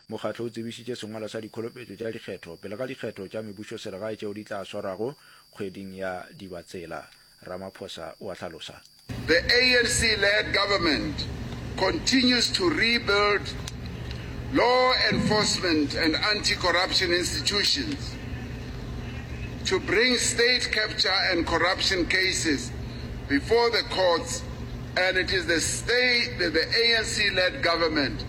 Mokgatlo o tsebišitše sengwalwa sa dikholopetšo tša dikgetho pele ga dikgetho tša mebušoselegae tšeo di tla swarwago kgweding ya Dibatsela, Ramaphosa o a hlalosa. The ANC-led government continues to rebuild law enforcement and anti-corruption institutions to bring state capture and corruption cases before the courts and it is the ANC-led government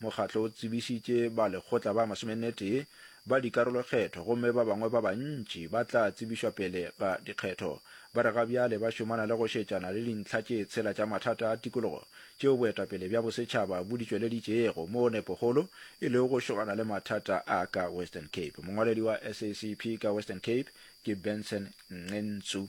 Mokgatlo o tsebišitše ba lekgotla ba masomenetee ba dikarolokgetho gomme ba bangwe ba bantši ba tla tsebišwa pele ga dikgetho. Ba re ga bjale ba šomana le go šetšana le dintlha tše tshela tša mathata a tikologo tšeo boetapele bja bosetšhaba bo di tšweleditšego moo nepokgolo e lego go šomana le mathata a ka Western Cape. Mongwaledi wa SACP ka Western Cape ke Benson Ngentsu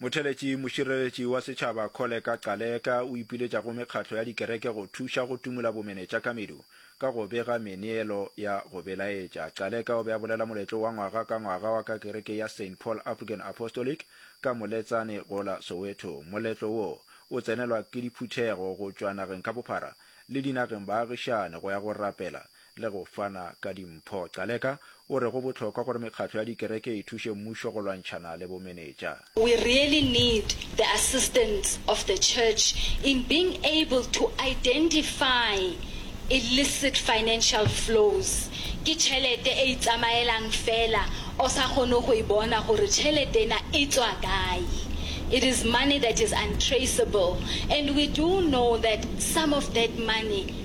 Motheletši Mošireletši wa Setšhaba Kholeka Gcaleka o ipiletša go mekgatlo ya dikereke go thuša go timola bomenetša ka medu ka go bega meneelo ya go belaetša. Gcaleka o be a bolela moletlo wa ngwaga ka ngwaga wa ka kereke ya Saint Paul African Apostolic ka Moletsane go la Soweto. Moletlo wo o tsenelwa ke diphuthego go tšwa nageng ka bophara le dinageng baagišane go ya go rapela le go fana ka dimpho. Caleka o re go bohlokwa gore mekgatlo ya dikereke e thuše mmušo go lwantšhana le bomenetša. We really need the assistance of the church in being able to identify illicit financial flows. Ke tšhelete e itsamaelang feela o sa kgone go e bona gore tšhelete ena e tšwa kae. It is money that is untraceable and we do know that some of that money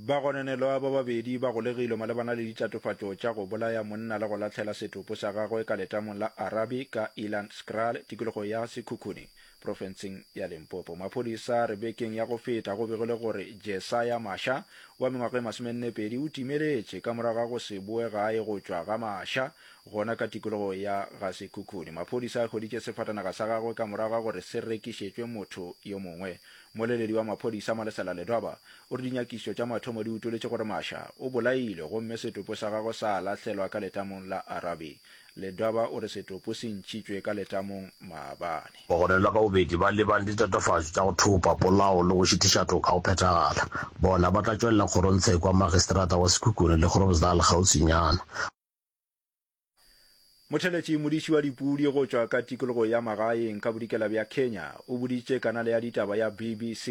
Bagononelwa ba babedi ba golegilwe malebana le ditatofatšo tša go bolaya monna le go lahlela setopo sa gagwe ka letamong la Arabi ka Ilanskral, tikologo ya Sekhukhune, profenseng ya Limpopo. Maphodisa a re bekeng ya go feta go begilwe gore Jesaya Masha wa mengwaga e masomennepedi o timeletše ka morago ga go se boe gae go tšwa ga maša gona ka tikologo ya ga Sekhukhune. Maphodisa a hweditše sefatanaga sa gagwe ka morago ga gore se rekišetšwe motho yo mongwe Mmoleledi wa maphodisa Malesela Ledoba o re dinyakišišo tša mathomo di utoletše gore Masha o bolailwe gomme setopo sa gagwe sa lahlelwa ka letamong la Arabe. Ledoba o re setopo se ntšhitšwe ka letamong maabane. Bagononelwa ka bobedi ba lebane le ditatofatšo tša go thopa, polao le go šitiša toka go phethagala. Bona ba tla tšwelela kgorong tsheko ya Magistrata wa Sekhukhune le Groblersdal kgauswinyana. Motheletši modiši wa dipudi go tšwa ka tikologo ya magaeng ka bodikela bja Kenya o boditše kanale ya ditaba ya BBC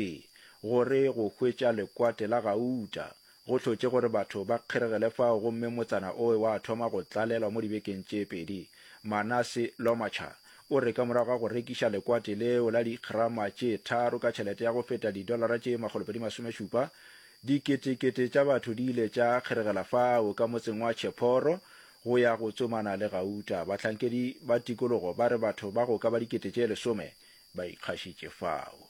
gore go hwetša lekwate la gauta go hlotše gore batho ba kgeregele fao gomme motsana oe wa thoma go tlalelwa mo dibekeng tše pedi. Manase Lomacha o re ka morago ga go rekiša lekwate leo la dikgrama tše tharo ka tšhelete ya go feta didolara tše makgolopedi masome šupa, Diketekete tša batho di ile tša kgeregela fao ka motseng wa Chephoro go ya go tsomana le gauta. Bahlankedi ba tikologo ba re batho ba go ka ba dikete tše lesome ba ikgašitše fao.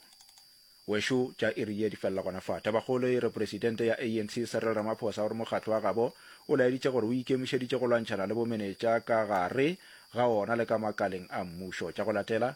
Wešo tša iri ye di felela gona fa. Tabakgolo e re Presidente ya ANC Cyril Ramaphosa o re mokgatlo wa gabo o laeditše gore o ikemišeditše go lwantšhana le bomenetša ka gare ga ona le ka makaleng a mmušo. Tša go latela.